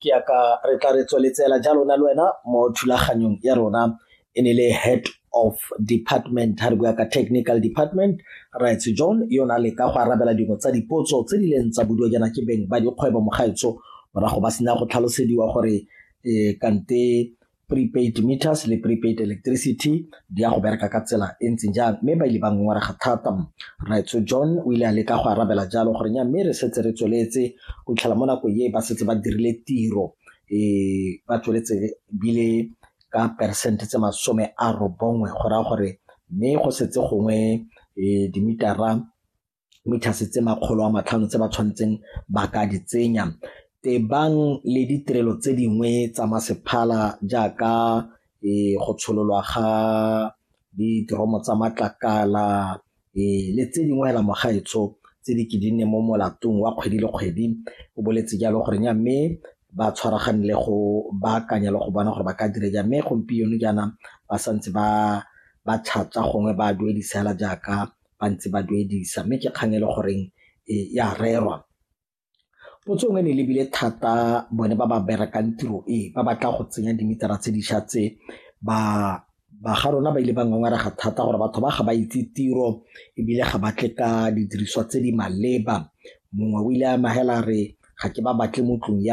ke ya ka re tla re tsweletsela jalo na le wena mo thulaganyong ya rona e ne le head of department ha re bua ka technical department rights john yo na le ka go arabela dingwe tsa dipotso tse di leng tsa boduo jaana ke beng ba dikgwebo mogaetso morago ba sena go tlhalosediwa gore um kante prepaid meters le prepaid electricity di ya go bereka ka tsela e ntseng jang mme ba ile ba ngongwarega thata raitso john o ile a leka go arabela jalo gore nya mme re setse re tsweletse go tlhela mo nako e ba setse ba dirile tiro e ba tsweletse bile ka percent tse masome a robongwe go raya gore mme go setse gongwe e, dimitara mithase tse makgolo a matlhano tse ba tshwanetseng ba ka di tsenya tebang le ditirelo tse dingwe tsa masephala jaaka e go tshololwa ga diteromo tsa matlakala e le tse dingwe hela mogaetsho tse di ke di nne mo molatong wa kgwedi le kgwedi o boletse jalo gore nya mme ba tshwaragane le go baakanya le go bona gore ba ka dire ja mme gompieno jaana ba santse ba ba chatsa gongwe ba duedisa hela jaaka ba ntse ba duedisa mme ke kgang e le goreng e a rerwa. Potso nngwe e ne e lebile thata bone ba ba berekang tiro e ba batla go tsenya dimetara tse dišwa tse ba ba ga rona ba ile ba ngongarega thata gore batho ba ga ba itse tiro ebile ga batle ka didiriswa tse di maleba mongwe o ile a amogela re ga ke ba batle mo tlong ya